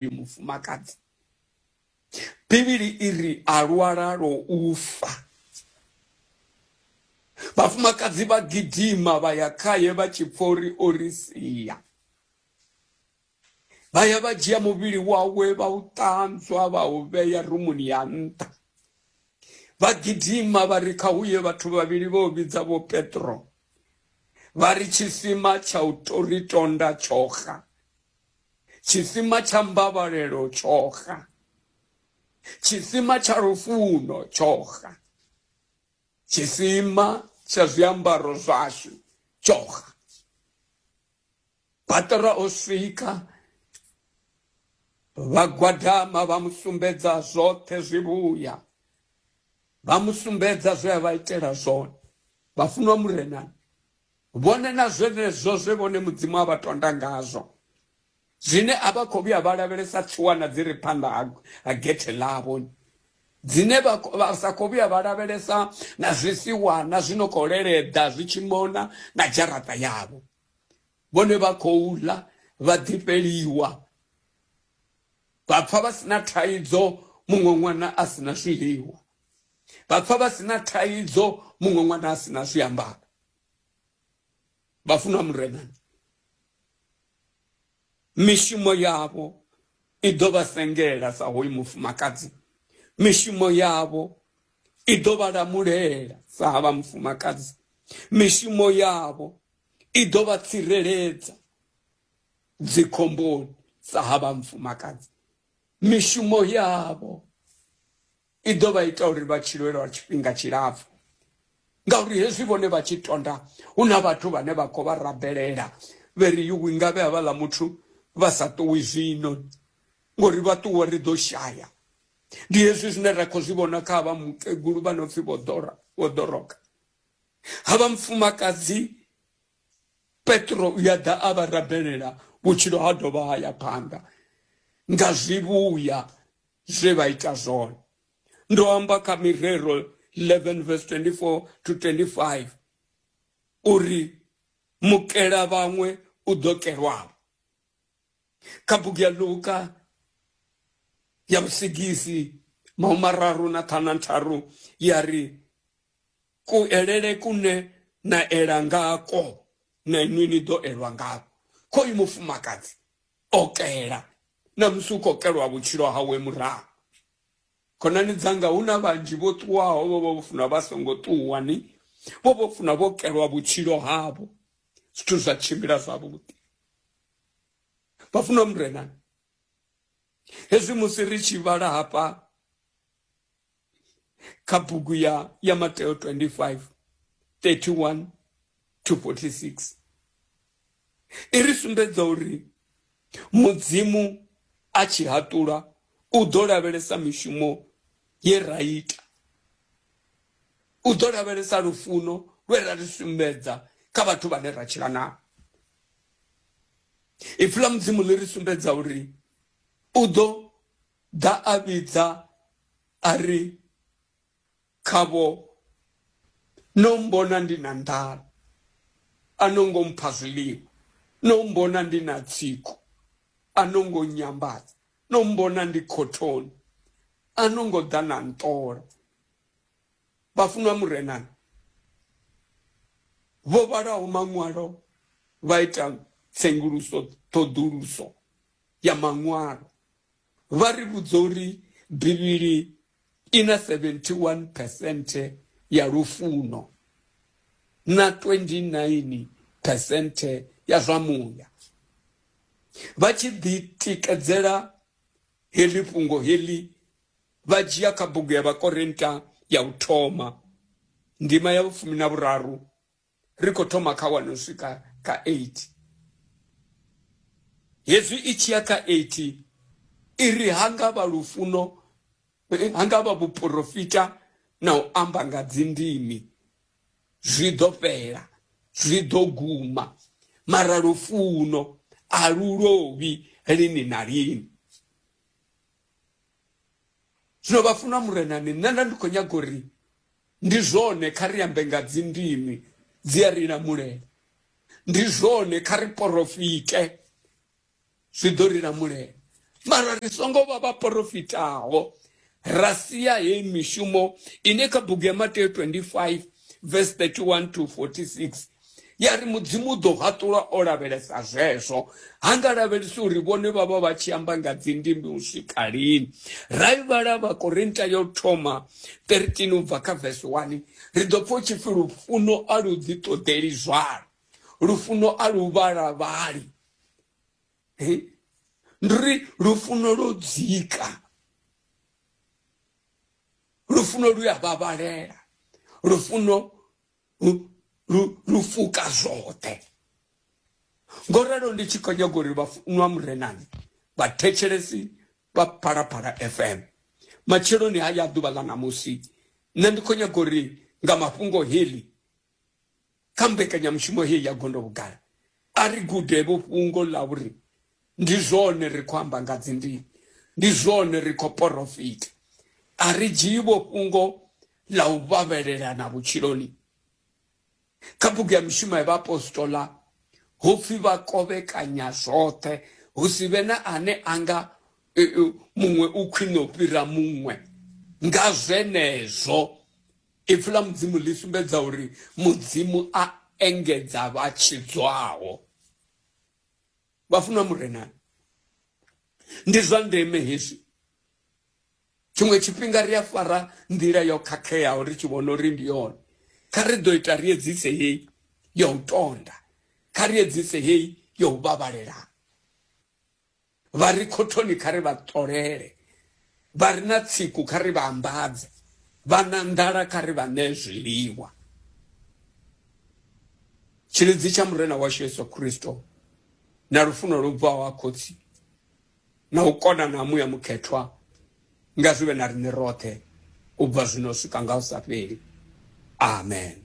ndi mufumakadzi bivhili i ri a lwala lwo ufa vhafumakadzi vha gidima vha ya khaye vha tshi pfa uri o ri sia vha ya vha dzhia muvhili wawe vha u ṱanzwa vha u vhea rumuni ya nṱha vha gidima vha ri kha uye vhathu vhavhili vho vhidza vho petro vha ri tshisima tsha u tori tonda tshoxa Tshisima tsha mbavhalelo tshoxa, tshisima tsha lufuno tshoxa, tshisima tsha zwiambaro zwashu tshoxa. Paṱera o swika vha gwadama vha mu sumbedza zwoṱhe zwivhuya vha mu sumbedza zwe a vha itela zwone vhafunwa murenani Vhone na zwenezwo zwe vhone Mudzimu a vha tonda ngazwo, zwine a vha khou vhuya vha lavhelesa tsiwana dzi re phanḓa ha, ha gethe ḽavho, dzine vha, vha sa khou vhuya vha lavhelesa na zwisiwana zwi no khou leleḓa zwi tshi mona nga dzharaṱa yavho. Vhone vha khou ḽa vha ḓifheliwa, vha pfa vha si na thaidzo muṅwe ṅwana a si na zwiḽiwa, vha pfa vha si na thaidzo muṅwe ṅwana a si na zwiambaro. vhafunwa murengani mishumo yavho i ḓo vha sengela sa hoyu mufumakadzi mishumo yavho i ḓo vha lamulela sa havha mufumakadzi mishumo yavho i ḓo vha tsireledza dzikhomboni sa havha mufumakadzi mishumo yavho i ḓo vha ita uri vha tshilwe lwa tshifhinga tshilapfu ngauri hezwi vhone vha tshi tonda hu na vhathu vhane vha khou vha rabelela vhe ri yuwi nga vhe havhaḽa muthu vha sa ṱuwi zwino ngori vha ṱuwa ri ḓo shaya ndi hezwi zwine ra khou zwi vhona kha havha mukegulu vha no pfhi vho ḓora vho ḓoroka havha mufumakadzi petro u ya ḓa a vha rabelela vhutshilo ha dovha ha ya phanḓa nga zwivhuya zwe vha ita zwone ndo amba kha mirero 11 verse 24 to 25 uri mukela vhaṅwe u ḓo kelwavho kha bugu ya luka ya vhusigisi mahumararu na ṱhana ntharu ya ri kuelele kune na ela ngako na inwi ni ḓo elwa ngako khoyu mufumakadzi Kokela, na musi u kokelwa vhutshilo hawe murahu. Khonani dzanga, hu na vhanzhi vho ṱuwaho vho vha vho funa vha songo ṱuwa, ni vho vho funa vho kelwa vhutshilo havho, zwithu zwa tshimbila zwavhuḓi. Vha funa Murenani. Hezwi musi ri tshi vhala hafha. kha bugu ya ya Mateo 25 31 to 46 i ri sumbedza uri mudzimu a tshi haṱula u ḓo lavhelesa mishumo ye ra ita u ḓo lavhelesa lufuno lwe ra ri sumbedza kha vhathu vhane ra tshila navho ipfi ḽa mudzimu ḽi ri sumbedza uri u ḓo Ḓa a vhidza a ri khavho, No mmbona ndi na nḓala, a no ngo mpha zwiḽiwa, no mmbona ndi na tsiko, a no ngo nnyambadza, no mmbona ndi khothoni, a no ngo ḓa na nṱola. Vhafunwa Murenani, vho vhalaho maṅwalo vha ita tsenguluso, ṱhoḓuluso ya maṅwalo. vha ri vhudza uri bivhili i na 71 phesenthe ya lufuno na 29 phesenthe ya zwa muya vha tshi ḓi tikedzela heḽi fhungo heḽi vha dzhia kha bugu ya vhakorinta ya u thoma ndima ya vhufumi na vhuraru ri khou thoma kha wani u swika kha 8 hezwi i tshi ya kha 8 i ri ha nga vha lufuno eh, ha nga vha vhuporofita na u amba nga dzindimi zwi ḓo fhela zwi ḓo guma mara lufuno a lu lovhi lini na lini zwino vhafunwa murenani nṋe nda ndi khou nyaga uri ndi zwone kha ri ambe nga dzindimi dzi a ri lamulela ndi zwone kha ri porofite zwi ḓo ri lamulela mara ri songo vha vha porofitaho ra sia heyi mishumo ine kha bugu ya mateo 25 verse 31 to 46 ya ri mudzimu u ḓo haṱulwa o lavhelesa zwezwo ha nga lavhelesi uri vhone vha vha vha tshi amba nga dzindimbi u swika lini ra i vhala vhakorinta yo thoma 13 u bva kha vese 1 ri ḓo pfa u tshi pfi lufuno a lu ḓi ṱoḓeli zwalo lufuno a lu vhalavhali ndi uri lufuno lwo dzika lufuno lu ya vhavhalela lufuno lu fuka zwoṱhe ngo ralo ndi tshi khou nyaga uri vhafunwa murenani vhathetshelesi vha phalaphala fm matsheloni ha ya ḓuvha ḽa ṋamusi nṋe ndi khou nyaga uri nga mafhungo heli kha mbekanyamushumo heyi ya gondo vhugala a ri gude vho fhungo ḽa uri Ndi zwone ri khou amba nga dzindimi, ndi zwone ri khou porofita, a ri dzhii-vho fhungo ḽa u vhavhelelana vhutshiloni. Kha bugu ya Mishumo ya Vhaapostola hu pfi vha kovhekanya zwoṱhe, hu si vhe na ane a nga muṅwe u khwine u fhira muṅwe. Nga zwenezwo, ipfi ḽa Mudzimu ḽi sumbedza uri Mudzimu a engedza vha tshidzwaho. vhafunwa murenani ndi zwa ndeme hezwi tshiṅwe tshifhinga ri a fara nḓila yo khakheaho ri tshi vhona uri ndi yone kha ri ḓo ita ri edzise heyi ya u tonda kha ri edzise heyi ya u vhavhalelana vha ri khothoni kha ri vha ṱolele Vha re na tsiku kha ri vha ambadze, vha na nḓala kha ri vha ṋee zwiḽiwa. Tshilidzi tsha Murena washu Yesu Kristo na lufuno lu bvaho ha Khotsi na u konana ha muya mukhethwa nga zwi vhe na riṋe roṱhe u bva zwino u swika nga u sa fheli. Amen.